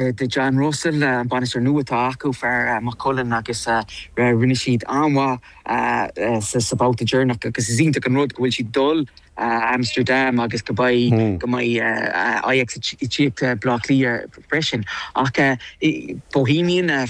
do John Russell, an bainisteoir nua atá acu, fear Maigh Cuilinn, agus rinne siad an-mhaith sa bhabhta deireanach agus is iontach an rud go bhfuil siad dul Amsterdam agus go mbeidh go mbeidh Ajax ag tíocht go Bleá Cliath freisin. Ach Bohéimigh na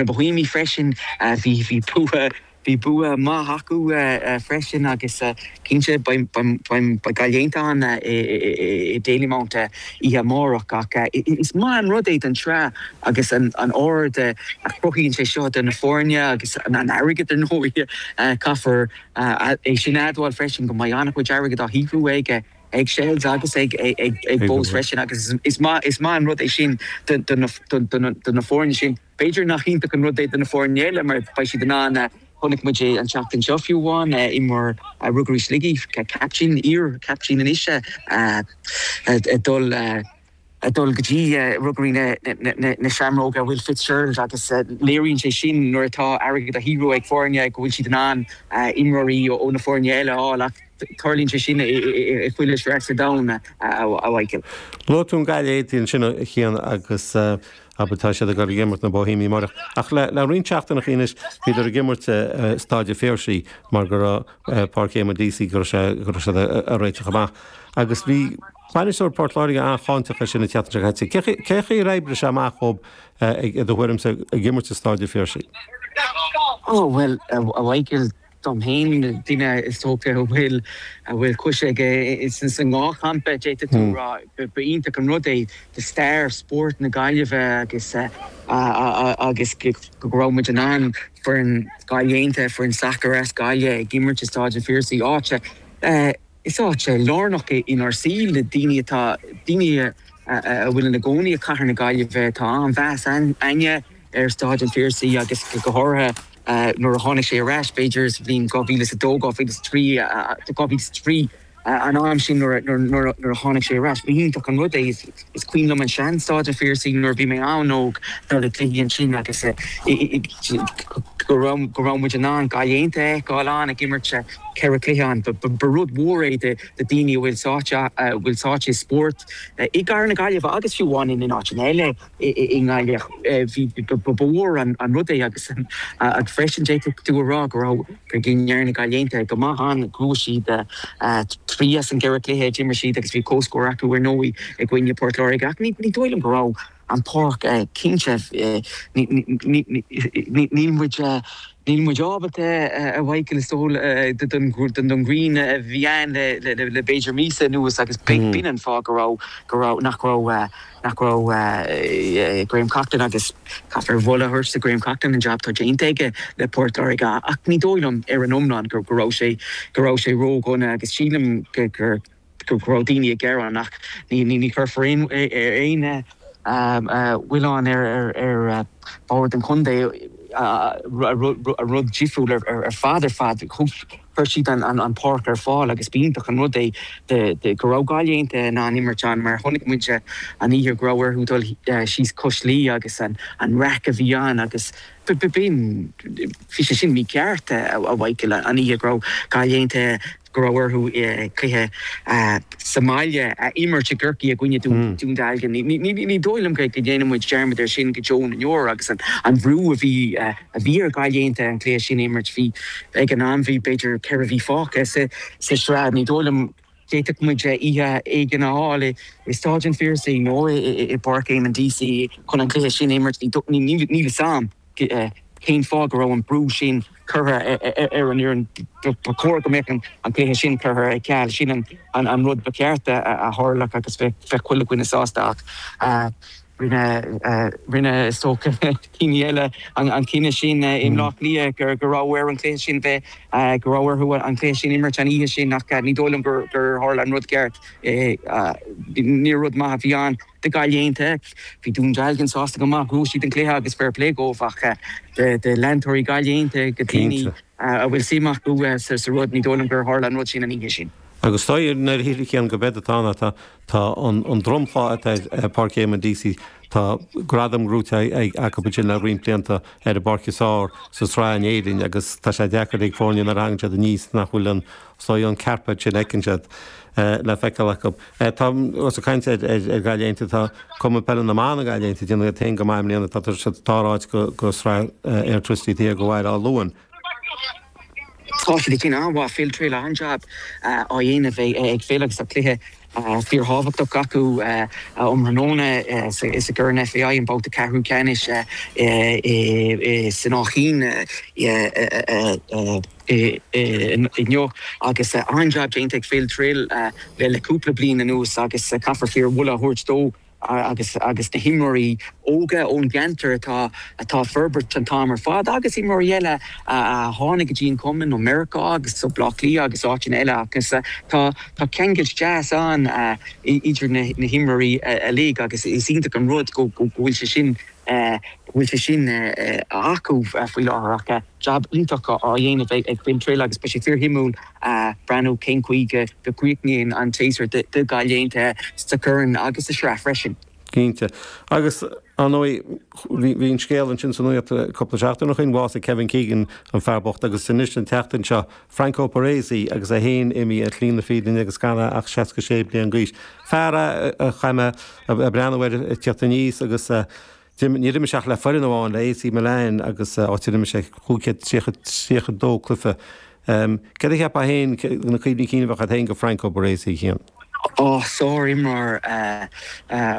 Bohéimigh freisin bhí bhí bua Bhí bua maith acu freisin agus cinnte beidh Gaillimh Aontaithe ann i Dalymount oíche amárach ach is maith an rud é don tsraith agus an aird a chruthaíonn sé seo do na foirne agus an airgead ar ndóigh. Caithfear é sin a admháil freisin go mbeidh an-chuid airgid á shaothrú ag Shels agus ag Bohs freisin agus is maith an rud é sin do na foirne sin. B'fhéidir nach iontach an rud é do na foirne eile mar beidh siad in ann a. Chonaic muid é an tseachtain seo fiú amháin, imreoir Ruagairí Shligigh, caiptín, iar-chaiptín anois, ag dul go dtí Ruagairí na Seamróige, Will Fitzgerald agus léiríonn sé sin nuair atá airgead á shaothrú ag foirne go bhfuil siad in ann imreoirí ó na foirne eile a fháil ach tarlaíonn sé sin i chuile shraith sa domhan, a Mhaidhcil. Luaigh tú Gaillimh Aontaithe ansin a Chian agus Abair tá siad ag dul ag imirt na Bohéimigh amáireach ach le roinnt seachtainí anois bhíodar ag imirt i Stáid a' Phiarsaigh mar go raibh Páirc Éamonn Deacy, go raibh sé, go raibh siad a' réiteach amach agus bhí bainisteoir Port Láirge an-cháinteach air sin an tseachtain seo caite. Cé, cén chaoi ar oibrigh sé amach dhób i do thuairimse ag imirt i Stáid a' Phiarsaigh? Ó bhuel, a Mhichael, Dom fhéin, duine is dócha a bhfuil a bhfuil cois aige insan sa ndhá champa d'fhéadfadh tú a rá. Ba iontach an rud é do stair spóirt na Gaillimhe agus agus go raibh muid in ann foireann Gaillimh Aontaithe, foireann sacair as Gaillimh ag imirt i Stáid an Phiarsaigh, áit a. Is áit lárnach é inár saol le daoine atá daoine a bhfuil ina gcónaí i cathair na Gaillimhe. Tá an-mheas againne ar Stáid an Phiarsaigh agus go háirithe nuair a tháinig sé ar ais, b'fhéidir sa bhliain 2002, 2003, 2003 an am sin nuair a tháinig sé ar ais. Ba iontach an rud é. Is cuimhin liom an sean Stáid an Phiarsaigh nuair a bhí mé an-óg dul ag cluichí ansin agus go raibh muid in ann Gaillimh Aontaithe a fheiceáil ann ag imirt ceithre chluiche ann. Ba rud mhór é do daoine a bhfuil sáite i spórt i gCathair na Gaillimhe agus fiú amháin in áiteanna eile i nGaillimh. Ba ba mhór an rud é agus freisin d'fhéadfadh tú a rá go raibh. Cé go ndearna Gaillimh Aontaithe go maith ann, bhuaigh siad trí as an gceithre chluiche a d'imir siad agus bhí comhscór acu ar ndóigh i gcoinne Port Láirge ach ní dóigh liom go raibh an pháirc cinnte. Níl muid ábalta, a Mhaidhcil, is dóigh liom don ghrian a bhí ann le b'fhéidir míosa anuas agus b'in an fáth go raibh go raibh nach raibh, nach raibh Graham Coughlan agus caithfear a mholadh a thabhairt do Graham Coughlan an jab atá déanta aige le Port Láirge ach ní dóigh liom ar an iomlán go raibh sé go raibh sé ródhona agus sílim gur go raibh daoine ag gearán ach ní ní ní chuirfear aon aon mhilleán ar ar ar bhord an chontae a rud difriúil ar ar fad ar fad thug Chuir siad an páirc ar fáil agus b'iontach an rud é go raibh Gaillimh Aontaithe in ann imirt ann mar chonaic muid an oíche go raibh orthu dul síos cois Laoi agus an raic a bhí ann agus b'in, bhí sé sin mícheart a Mhaidhcil, an oíche go raibh Gaillimh Aontaithe, go raibh orthu cluiche sa mbaile a imirt i gCorcaigh i gcoinne Dún Dealgan. Ní dóigh liom go ndéanfaidh muid dearmad air sin go deo na ndeor agus an bhrú a bhí. a bhí ar Ghaillimh Aontaithe an cluiche sin a imirt. Bhí, ag an am, bhí b'fhéidir ceithre mhí fágtha sa tsraith. Ní dóigh liom, d'fhéadfadh muid oíche éigin a fháil i Stáid an Phiarsaigh nó i bPáirc Éamonn Deacy chun an cluiche sin a imirt. Níl 'fhios a'm cén fáth go raibh an brú sin curtha ar an fhoireann. Ba chóir go mbeadh an cluiche sin curtha ar ceal. Sin an rud ba cheart a tharlódh agus bheadh chuile dhuine sásta. Rinne is dócha duine eile an cinneadh sin i mBleá Cliath go raibh ar an chluiche sin bheith go raibh orthu an cluiche sin imirt an oíche sin ach ní dóigh liom gur tharla an rud ceart. Ní rud maith a bhí ann do Gaillimh Aontaithe. Bhí Dún Dealgan sásta go maith, bhuaigh siad an cluiche agus fair play dóibh ach do leantóirí Gaillimh Aontaithe, do dhaoine a bhfuil suim acu sa rud, ní dóigh liom gur tharla an rud sin an oíche sin. Agus tá a fhios ag Cian go b'fhéidir tá an Tá an dromchla atá ar Páirc Éamonn Deacy, tá gradaim gnóite acu ansin le roinnt blianta ar an bpáirc is fearr sa tsraith in Éirinn agus tá sé deacair ag foirne nuair a thagann siad aníos nach bhfuil an soi, an carpet sin a fheiceann siad, le feiceáil acu. Tá, os ag caint ar Gaillimh Aontaithe, tá Cumann Peile na mBan Gaillimh Aontaithe, ag déanamh iad féin go maith i mbliana, tá siad sa dara háit de Sraith Airtricity taobh thiar de Bhaile Átha Luain. Tá siad ag déanamh an-mhaith, Phil Trill, an-jab á dhéanamh ag Phil agus tá cluiche fíorthábhachtach acu um thráthnóna is i gCorn an FAI an babhta ceathrú ceannais san Áth Cinn inniu agus an-jab déanta ag Phil Trill le cúpla bliain anuas agus caithfear fíor-mholadh a thabhairt dó agus agus na himreoirí óga ón gceantar atá atá forbairt an t-am ar fad agus imreoirí eile a a tháinig go dtí an cumann ó Meiriceá agus ó Bhaile Átha Cliath agus áiteanna eile agus tá tá ceangailt deas ann idir na na himreoirí uilig agus is iontach an rud go go bhfuil sé sin go bhfuil sé sin acu faoi láthair ach jab iontach á dhéanamh ag Phil Trill agus beidh sé fíor shuimiúil ag breathnú cén chaoi go gcríochnaíonn an séasúr do Ghaillimh sa Chorn agus sa tSraith freisin. Cinnte. Agus, ar ndóigh, bhí an scéal ansin sa nuacht cúpla seachtain ó shin, bhásaigh Kevin Keegan, an fear bocht, agus anois an tseachtain seo, Franco Baresi agus é féin imithe ar shlí na fírinne agus gan é ach 66 bliain d'aois. Fear a chaith mé ag breathnú air ag teacht aníos agus a. Ag imirt, níor imir sé ach le foireann amháin, le AC Milan agus áit ar imir sé cúig chéad tríocha, tríocha dó cluiche. Céard a cheapfá na cuimhní cinn a bheadh agat féin de Franco Baresi, Chian? Ó, sár-imreoir a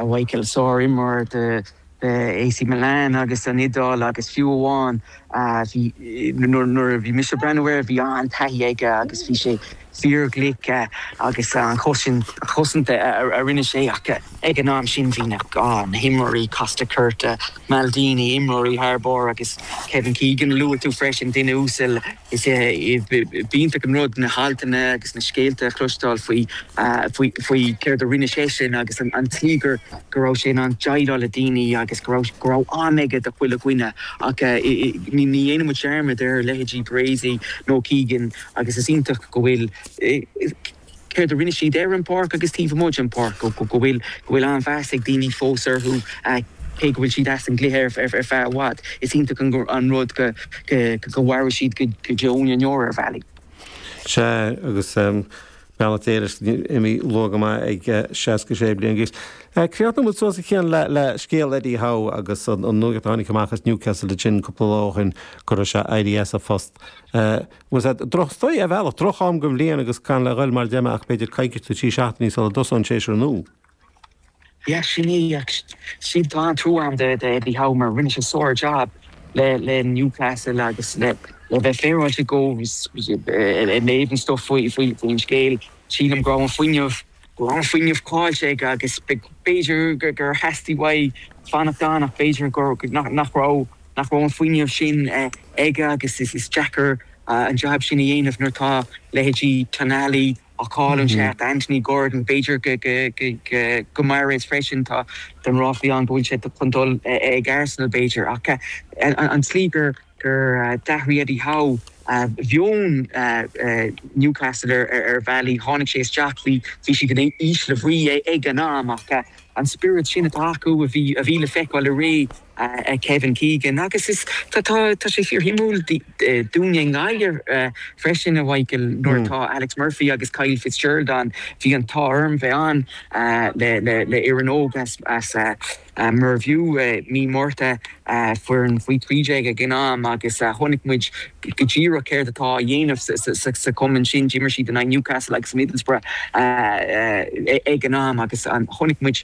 Mhaidhcil, sár-imreoir do AC Milan agus don Iodáil agus fiú amháin Nuair a bhí mise ag breathnú air bhí an-taithí aige agus bhí sé fíorghlic agus an chosaint a rinne sé ach ag an am sin bhí na himreoirí Costacurta, Maldini, imreoirí thar barr agus Kevin Keegan a luaigh tú freisin, duine uasal. Is iontach an rud na haltanna agus na scéalta a chloisteáil faoi céard a rinne seisean agus an tslí gur. go raibh sé in ann deighleáil le daoine agus go raibh am aige do chuile dhuine ach ní dhéanann muid dearmad ar leithéidí Baresi nó Keegan agus is iontach go bhfuil céard a rinne siad ar an bpáirc agus taobh amuigh den pháirc go bhfuil an-mheas ag daoine fós orthu cé go bhfuil siad as an gcluiche ar feadh i bhfad. Is iontach an rud go mairfidh siad go deo na ndeor ar bhealaí. Sea agus. Beannacht Dé leis, imithe luath go maith ag 66 bliain d'aois. Críochnóidh muid suas a Chian le scéal Eddie Howe agus an nuacht a tháinig amach as Newcastle freisin cúpla lá ó shin go raibh sé ag éirí as a phost. Bhuel, sea, droch story ar bhealach, droch am den bhliain agus gan le ghoil mar a déarfá ach b'fhéidir coicís nó trí seachtainí sula dtosaíonn an séasúr nua. Yeah sin í ach sea tá an-trua agam do do Eddie Howe mar rinne sé sár jab le le Newcastle agus le le bheith féaráilte go ag léamh an stuff faoi faoi faoin scéal sílim go raibh an fuinneamh go raibh an fuinneamh caillte aige agus b'fhéidir go gur theastaigh uaidh fanacht ann ach b'fhéidir gur nach nach raibh nach raibh an fuinneamh sin aige agus is is deacair an jab sin a dhéanamh nuair atá leithéidí Tonali cailleann sé Anthony Gordon. B'fhéidir Guimarães freisin. Tá ráflaí ann go bhfuil sé chun dul ag Arsenal b'fhéidir ach an tslí gur d'athraigh Eddie Howe mheon Newcastle ar bhealaí, tháinig sé isteach, bhí siad in ísle brí ag an am ach An spiorad sin atá acu a bhí a bhí le feiceáil i ré Kevin Keegan agus is tá tá tá sé fíorshuimiúil dúinne i nGaillimh freisin a Mhichael nuair atá Alex Murphy agus Kyle Fitzgerald ann bhí an t-ádh orm bheith ann le le le foireann óg as as Mervue mí Márta foireann faoi 13 ag an am agus chonaic muid go díreach céard atá á dhéanamh sa chumann sin. d'imir siad in aghaidh Newcastle agus Middlesbrough ag an am agus chonaic muid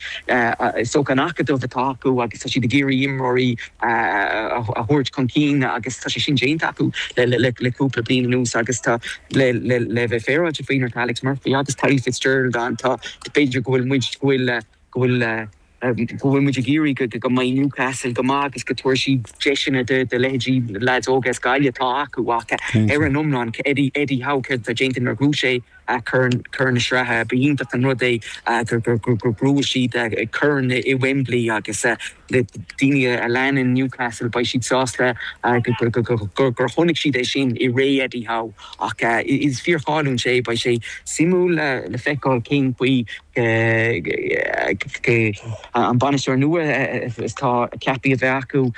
is dócha an t-acadamh atá acu agus tá siad ag iarraidh imreoirí a thabhairt chun cinn agus tá sé sin déanta acu le cúpla bliain anuas agus tá, le bheith féaráilte faoi, nuair atá Alex Murphy agus Paddy Fitzgerald ann, tá, b'fhéidir go bhfuil muid, go bhfuil, go bhfuil. go bhfuil muid ag iarraidh go mbeidh Newcastle go maith agus go dtabharfaidh siad deiseanna do leithéidí leads óga as Gaillimh atá acu ach ar an iomlán Eddie Howe céard atá déanta nuair a bhuaigh sé Corn na Sraithe ba iontach an rud é gur bhuaigh siad Corn i Wembley agus le daoine a leanann Newcastle beidh siad sásta gur chonaic siad é sin i ré Eddie Howe ach is fíor cháiliúil é beidh sé suimiúil le feiceáil cén chaoi an bainisteoir nua atá ceaptha a bheith acu,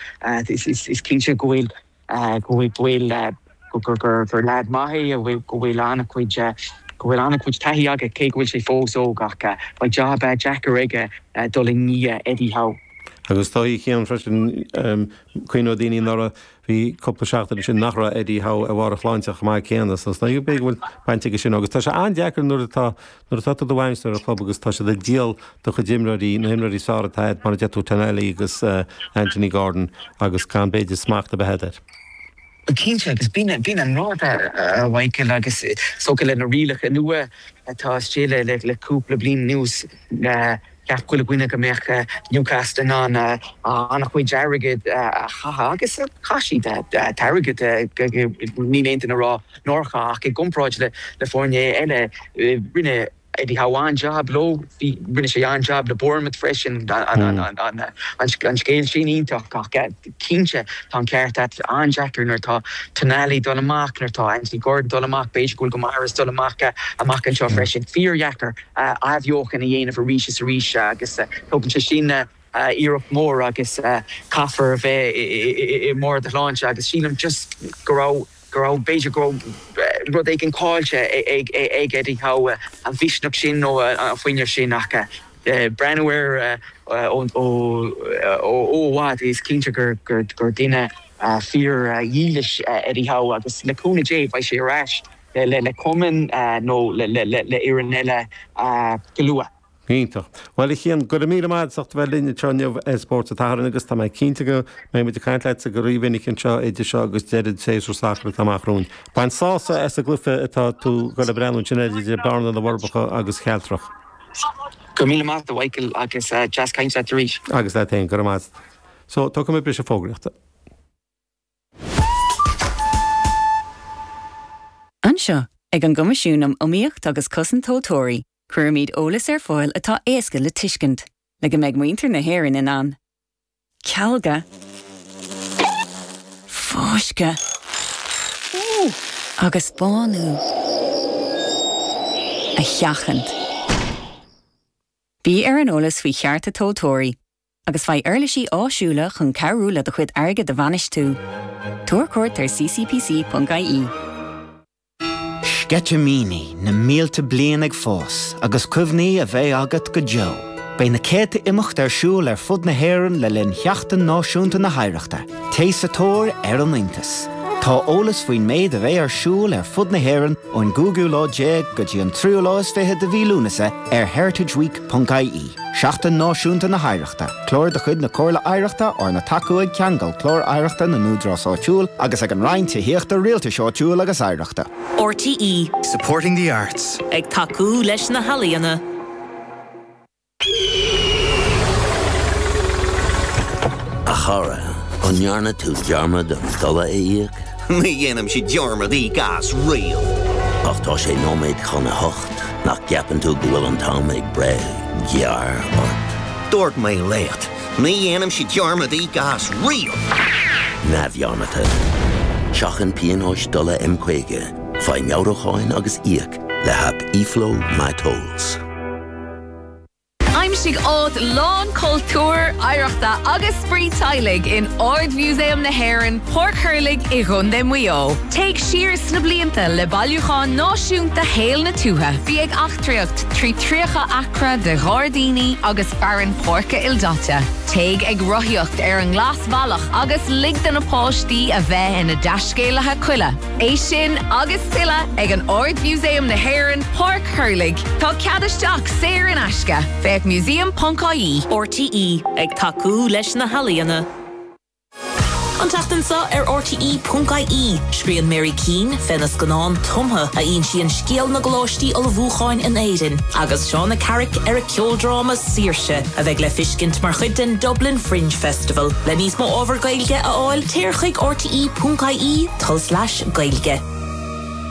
is cinnte go bhfuil, go bhfuil, gur lead maith é, go bhfuil an-chuid, go bhfuil an-chuid taithí aige cé go bhfuil sé fós óg ach beidh jab deacair aige dul i ndiaidh Eddie Howe. Agus tá a fhios a'inn freisin, cuimhneoidh daoine nuair a. Bhí cúpla seachtain ansin nach raibh Eddie Howe ar bharr a shláinte chomh maith céanna so b'fhéidir go bhfuil baint aige sin agus tá sé an-deacair nuair atá nuair atá tú i do bhainisteoir ar chlub agus tá siad ag díol do chuid imreoirí, na himreoirí is fearr atá agat mar a deir tú Tonali agus Anthony Gordon agus gan b'fhéidir smacht a bheith agat air. Cinnte agus b'in b'in an rud a Mhaidhcil agus is dócha le na rialacha nua atá istigh le le cúpla bliain anuas, Cheap chuile dhuine go mbeadh Newcastle in ann an-chuid airgid a chaitheamh agus chaith siad airgead, níl aon duine ag rá nár chaith, ach i gcomparáid le foirne eile rinne Eddie Howe an-jab leo, rinne sé an-jab le Bournemouth freisin, an scéal sin iontach ach cinnte tá an ceart agat, an-deacair nuair atá Tonali ag dul amach, nuair atá Anthony Gordon ag dul amach, b'fhéidir go bhfuil Guimarães ag dul amach amach anseo freisin, fíordheacair. athbheochan a dhéanamh arís is arís agus tógann sé sin iarracht mhór agus caithfear a bheith i mbarr do shláinte agus sílim just go raibh, go raibh, b'fhéidir go raibh rud éigin caillte ag Eddie Howe, an misneach sin nó an fuinneamh sin ach ag breathnú air ó i bhfad is cinnte gur duine fíor dhílis Eddie Howe agus le cúnamh Dé beidh sé ar ais. le cumann nó le foireann eile go luath. Iontach. Bhuel a Chian, go raibh míle maith agat as a bheith linn anseo inniu ar Spórt an tSathairn agus tá mé cinnte go mbeidh muid ag caint leatsa go rí-mhinic anseo idir seo agus deireadh an tséasúir sacair atá amach romhainn. Bain sásamh as an gcluiche atá tú ag dul ag breathnú ansin air idir Bearna na Forbacha agus Cealtrach. Go raibh míle maith agat, a Mhichael, agus deas caint leat arís. Agus leat féin, go raibh maith agat. So, tógfaidh muid briseadh fógraíochta. Anseo, ag an gCoimisiún um Iomaíocht agus Cosaint Tomhaltóirí, cuirimid eolas ar fáil atá éasca le tuiscint, le go mbeidh muintir na hÉireann in ann cealgadh, fáisceadh agus bánú a sheachaint. Bí ar an eolas faoi chearta tomhaltóirí agus faigh uirlisí áisiúla chun cabhrú le do chuid airgid a bhainistiú. Tabhair cuairt ar ccpc.ie. Sceitimíní na mílte bliain ag fás agus cuimhní a bheidh agat go deo. Beidh na céadta imeacht ar siúl ar fud na hÉireann le linn Sheachtain Náisiúnta na hOidhreachta. Téigh sa tóir ar an iontas! Tá eolas faoin méid a bheidh ar siúl ar fud na hÉireann ón gcúigiú lá déag go dtí an tríú lá is fiche de mhí Lúnasa ar heritageweek.ie. ie. Seachtain Náisiúnta na hOidhreachta, clár de chuid na Comhairle Oidhreachta arna tacú ag Ceangal Clár Oidhreachta na nÚdarás Áitiúil agus ag an Roinn Tithíochta, Rialtais Áitiúil agus Oidhreachta. RTÉ. Supporting the arts. Ag tacú leis na healaíona. A chara, an ndearna tú dearmad an dola a íoc? Ní dhéanann siad dearmad i gcás Real. Ach tá sé nóiméad chun a hocht, nach gceapann tú go bhfuil an t-am ag breith gearr ort? Dúirt mé leat, ní dhéanann siad dearmad i gcás Real! Neamhdhearmadta. Seachain pionóis dola M50, faigh meabhrúcháin agus íoc le haip eFlow My Tolls. Aimsigh áit lán cultúir, oidhreachta agus spraoi teaghlaigh in Ard-Mhúsaem na hÉireann, Páirc Thurlaigh i gContae Mhaigh Eo. Téigh siar sna blianta le Bailiúchán Náisiúnta Shaol na Tuaithe. Bí ag eachtraíocht trí 30 acra de ghairdíní agus fearann páirce ildaite. Téigh ag rothaíocht ar an nGlasbhealach agus lig do na páistí a bheith ina dtaiscéalaithe coille. É sin agus tuilleadh ag Ard-Mhúsaem na hÉireann, Páirc Thurlaigh. Tá cead isteach saor in aisce, féach museum.ie. RTÉ ag tacú leis na healaíona. An tseachtain seo ar RTE.ie, scríonn Mary Keane fé na scannáin tumtha a insíonn scéal na gcoláistí ullmhúcháin in Éirinn, agus Shauna Carrick ar a ceoldráma Saoirse! a bheidh le feiscint mar chuid den Dublin Fringe Festival. Le níos mó ábhar Gaeilge a fháil, téir chuig rte.ie tulslais Gaeilge.